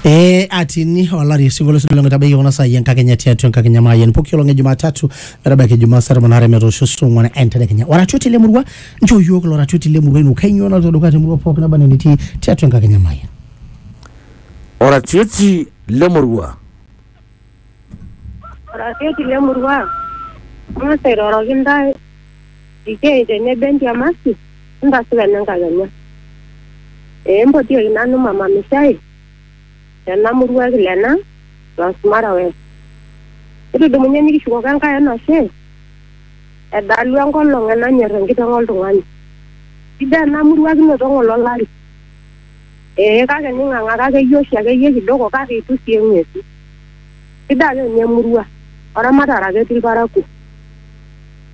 Eh, atini olari osinkolio sidolong itabaiki kuna saai enkakenya tiatua enkakenya maayian poki olong e jumatatu metabaiki jumaa saa tomon aare metoosho saa ong'uan entedekenya oratioti le murua nchoo iyiook ilo ratioti le murua ino kainyoo naloito dukuya te murua pooki naba enaa enitii tiatua enkakenya maayian oratioti lemurua Oratioti le murua ang'as airoroki intae itii tenebo entiamati entasupa ene nkakenya. Ee mpotioki nanu mama Mishai tena murua e Kilena Transmara West. Ekidumunye nikishukoko Enkai enashe edalu enkolong enanyor enkiteng oltung'ani. Sidai ena murua kinoto ng'ole olari. Ee kake ning'ang'aka akeyie oshi akeyie kidogo kake eitu sii eng'uesu. Sidai ake ninye emurua oramatare ake etii ilparakuo.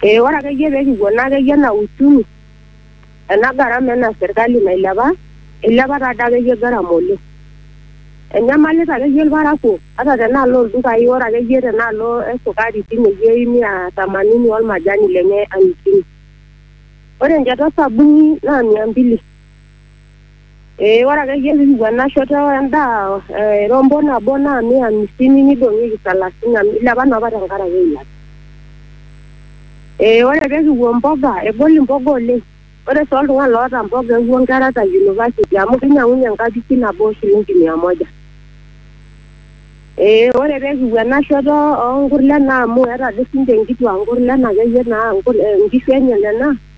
Ee ore akeyie pee kipuo naa akeyie anaa uchumi ena garama ena serkali nailepa, eilepa taa doi akeyie garama oleng. Enyamalita akeyie ilparakuo ata tenaalo oo ldukai ore akeyie tenaalo e sukari teine wueji mia tamanini olmajani lenye amisini. Ore enchata o sabuni naa mia mbili. Ee ore akeyie pikipuo ena shoto endaa eh, rombo nabo naa mia hamsini nidong'ieki salasini amu ilepa naa apa tenkaraki eilata. Ee ore pekipuo mboga egol imboga oleng. Ore sii oltung'ani loota mboga ewuo nkera te university amu kinyang'unye enkapishi nabo shilingi mia moja. Ee ore pekipuo ena shoto onkurlen amu eeta ade sinche nkituak nkurlen akeyie naa nkishu enye nena,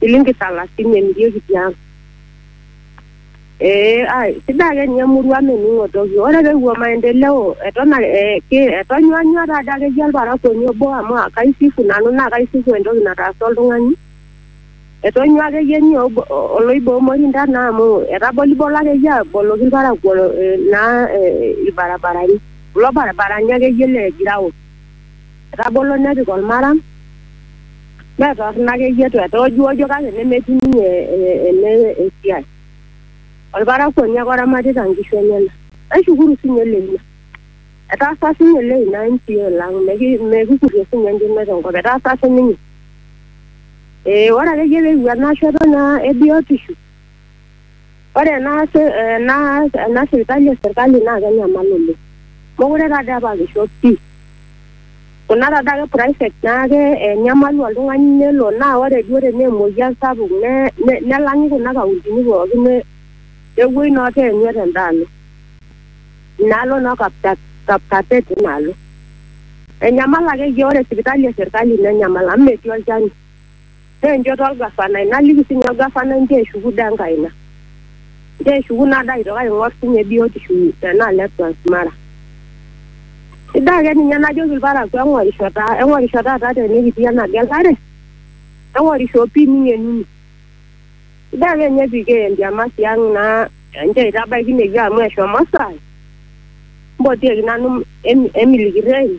shilingi salasini emirieki tiang. Ee ai, sidai ake ninye emurua mening'o toki. Ore peewuo maendeleo eton ake ee ki etonyuanyua taa dii akeyie olparakuoni obo amu kaisifu nanu naa kaisifu entoki nataasa oltung'ani. Etonyua akeyie ninye obo oloiba omorinda naa amu etabolibolo akeyie aboloki ilparakuo ee naa ee ilbarabarani kulo barabarani akeyie le ground. Etabolo nepik olmaram, mee torrono akeyie eitu etoojuojo kake nemetii ninye eh, ene esiai. Olparakuoni ake oramatita nkishu enyena. Naishukuru sii ninye Leina. Etaasa sii ninye Leina MCA lang, mekikurie sii ninye enkima te nkop, etaasa sii ninye. Eh, ore akeyie pee eewuo ena shoto naa ebiotisho. Ore ena, ena, ena sipitali e sirkali naa kenyamal oleng. Mokure taa doi apa kisho pii. Kuna taa doi ake private naa kenyamalu oltung'ani nelo naa ore duo tenaa emoyian sapuk nelang'i kuna kauntini pooki nepuoi naa oteenya tenda alo. Ina alo naa e Kapsabet ina alo. Enyamal akeyie ore sipitali e sirkali nenyamal amu metii olchani. pee enchoto olgafanai naliki sii ninye olgafanai inchoo eshuku dee enkae ina inchoo eshuku naa dee aitoki aing'or sii ninye biotisho tena alo e Transmara. Sidai ake ninye najoki ilparakuo eng'orisho taa eng'orisho taata tenikitii ena gelare eng'orisho pii ning'enuni. Sidai ake ninye pii kiya entiamati ang' naa enchoo aitabaiki ine wueji amu eshomo esaa. Mpotieki nanu emiliki irreen.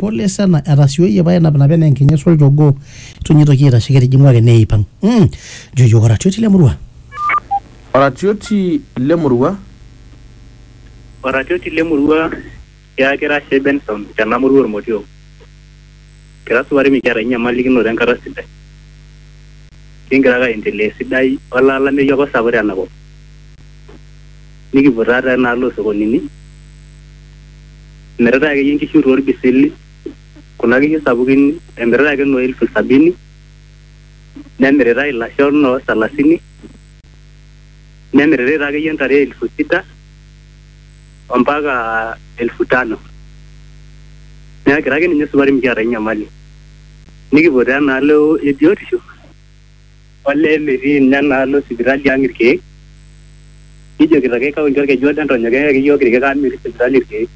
pole sana etasioyie pae enapinapa enaa enkinyes olchogoo itu ninye itoki aitashe ketijing'u ake neipang mm. jo iyiok oratioti lemurua Oratioti lemurua. Oratioti lemurua tiaaki ira Shei Benson tena murua Olmotio. Kira supati mikiata enyamalikinoto enkata sidai. Kigira ake aendelea esidai olee olameyu apa osapuk tena kop. Nikipuo taata enaalo oo sokonini, emiritae akeyie nkishu too lbisili, kuna kishu sapukin emiritae ake noo elfu sabini, nemiritae ilasho noo salasini, nemiritae taa akeyie ntare elfu sita ompaka elfu tano. Niaku kira ake ninye supati mikiata ae nyamali. Nikipuo taa enaalo e biotisho. olee metii ninye enaalo sipitali ang irkeek kijokito ake kaunti orkeju odo entonyok eyaki iyiook irkeek amu metii sipitali irkeek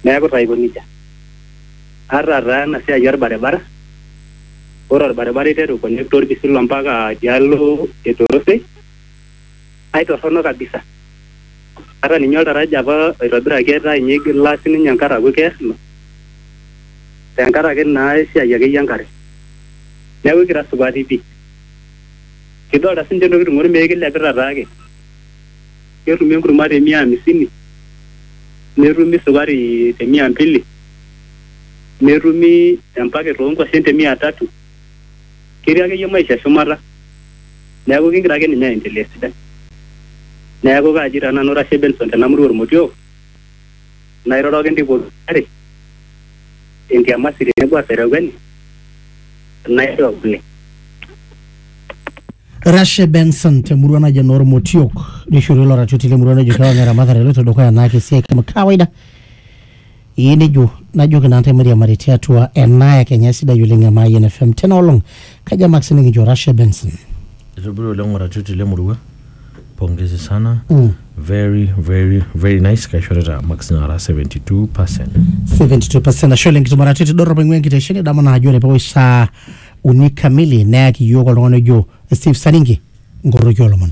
neeku taa aiko nejia ata taa ena siai orbaribara ore orbaribara iteru connect orpisilu ompaka tialo etorosei. aitorrono kabisa ata ninye oltaraja apa oitobiraki etaa inye igila sininye enkare aaku keer ilo tenkaraki naa esiai akeyie enkare neeku ikira supati pii kidolta sinche intokiting ormeek kilepita taake ketumi enkurma te mia amisini netumi sukari te mia mbili netumi empaket onkuashen te mia tatu. ketii akeyie maisha shumata neaku kingira ake ninye aendelea esidai. Neaku kaaji taa nanu Rashe Benson tena murua Olmotiok nairoroki intae pooki inchere entiamasi tenebo aserewueni naishoo kule. Rashe Benson te murua naji enoo Olmotiok neishoorie ilo ratioti le murua nejo kewan eramatare eloito dukuya anaake esiai kama kawaida. Ee nejo najoki naa ntae mairiamari tiatua ena e Kenya sidai oleng e Mayian FM tena olong. Kajo amak sinikincho Rashe Benson. Itobiri oleng oratioti le murua. Pongezi sana. Mm. Very very very nice kaishorita marks nara 72%. 72% ashe oleng kitum oratioti dorrop aing'ua enkitesheni nidamu naa ajo ore pewosh saa uni kamili neyaki iyiook oltung'ani ojo Steve Saringi nkorroki oolomon.